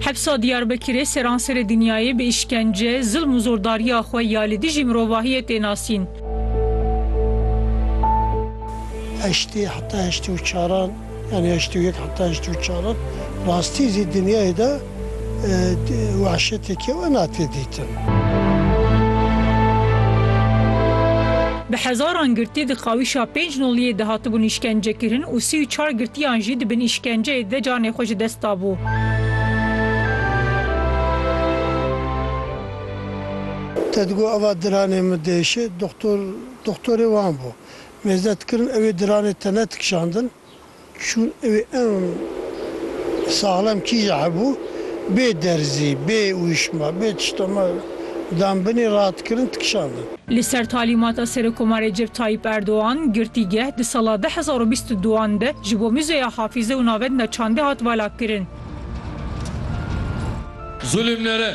Hepsa Diyarbekirê seranserê dinyayê bi îşkence, zilm û zordariya xwe ya li dijî mirovahiyê tê nasîn. Heştê heta heştê û çaran yanî heştê û yek heta heştê û çaran rastî zî dinyayê de, Wahşetekê wena tê dîtin. Bi hezaran girtî di qawîşa pênc noliyê de hatibûn îşkencekirin û sî û çar girtiyan jî di bin îşkenceyê de canê xwe ji dest dabû. Te digot eva diranê min diêşe, doxtor doxtorê wan bû. Mêze dikirin ewê diranê te ne dikişandin. Çûn ew ê ew saxlem kîja hebû, bê derzî, bê ûyişma, bê tişta me dan binê ra dikirin dikişandin. Li ser talîmata Serokomarê Recep Tayyîp Erdogan, girtîgeh di sala du hezar û bîst û duan de ji bo Muzeya Hafîze û Navenda Çandê hat valakirin. Zulm nere.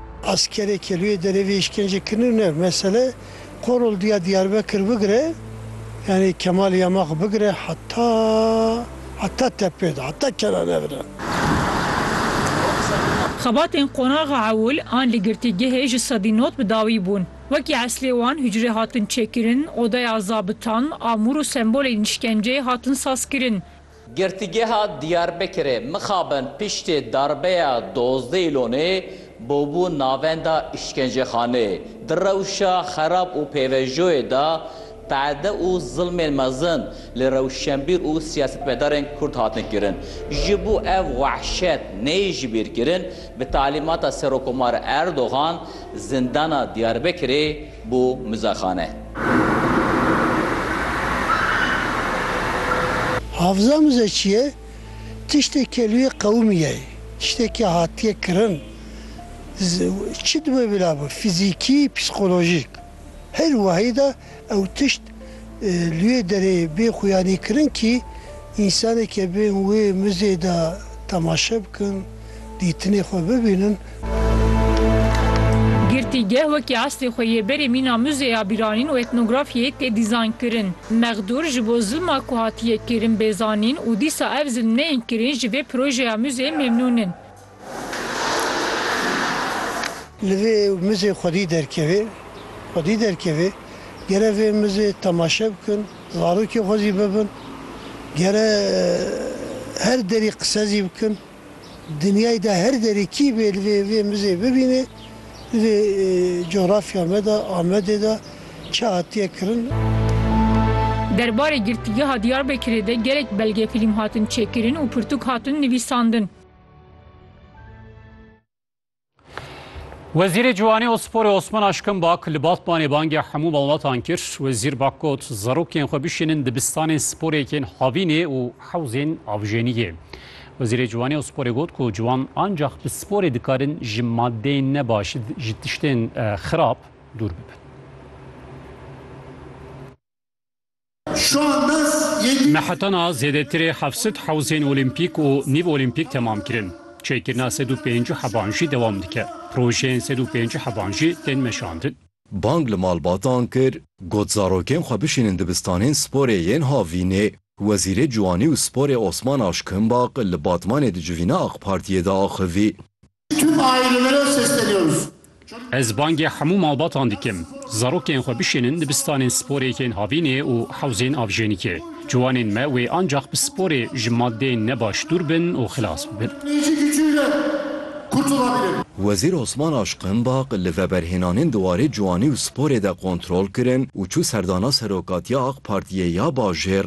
Askerê kelûyê derê vê îşkencê kirine ne mesele, Korol diya Diyarbekir bigire yanî Kemal ya me xwe bigire heta heta tepê de heta kena nevire. Xebatên qonaxa ewil an li girtîgehê ji sedî not bi dawî bûn. Wekî eslê wan hucrê hatin çêkirin, odaya zabitan, amûr û sembolên îşkenceyê hatin sazkirin. Girtîgeha Diyarbekirê mixabin piştê darbeya dozdeh îlonê bûbû navenda îşkencexanê. Di rewşa xerab û pêvejoyê de qeede û zilmên mezin li rewşenbîr û siyasetmedarên Kurd hatin kirin. Ji bo ev wehşet neyê jibîrkirin, bi talîmata Serokomar Erdogan zindana Diyarbekirê, Bo mizexane. Hafiza mize çi ye? Tiştê kelûyê qewimî ye. Tiştekî hatiye kirin. Çi dibe bila bi, fîzîkî, psîkolojîk. Her wahî de ew tişt Lûyê derê bê xuyanî kirin kî însaneke bên wê muzê de temaşe bikin, dîtinê xwe bibînin. Girtîgeh wekî eslê xwe yê berê mîna muzê ya bîranîn û etnografyayê tê dîzayn kirin. Mexdûr ji bo zilma ku hatiye kirin bê zanîn û dîsa ev zilm neyên kirin ji vê projeya muzê memnûn in. Li vê mizê xwedî derkevê, xwedî derkevê, gere vê mizê temaşe bikin, zarokê xwe zî bibin, gere her derî qise zî bikin, dinyayê de her derî kî bê li vê vê mizê bibînê, li vê cografya me de, Amedê de çi hatiye kirin. Der barê Girtîgeha Diyarbekirê de gelek belgefîlm hatin çêkirin û pirtûk hatin nivîsandin. Wezîrê Ciwanê û Sporê Osman Aşkin Bak li Batmanê bangê hemû malbatan kir. Wezîr Bak got, zarokên xwe bişînin dibistanên sporêkên havînê û hewzên avjeniyê. Wezîrê Ciwanê û Sporê got ku ciwan ancax bi sporê dikarin ji madeyên nebaş, ji tiştên xirab dûr bibin. Mehetana zêdetirê heft sed hewzên olîmpîk û nîv olîmpîk temam kirin. Çêkirina sed û pêncî heban jî dewam dike. Projeyên sed û pêncî heban jî tên meşandin. Bang li malbatan kir, got zarokên xwe bişînin dibistanên sporê yên havînê. Wezîrê Ciwanî û Sporê Osman Aşkimbaq li Batmanê di civîna Aqpartiyê de axivî. Tüm ailelere sesleniyoruz. Ez bangê hemû malbatan dikim, zarokên xwe bişînin dibistanên sporêkên havînê û hewzên avjênîkê. Ciwanên me wê ancax bi sporê ji madeyên ne baş dûr bin û xilas bibin. Wezîr Osman Aşqin Baq li veberhênanên di warê ciwanî û sporê de kontrol kirin û çû serdana Serokatiya AK Partiyê ya bajêr.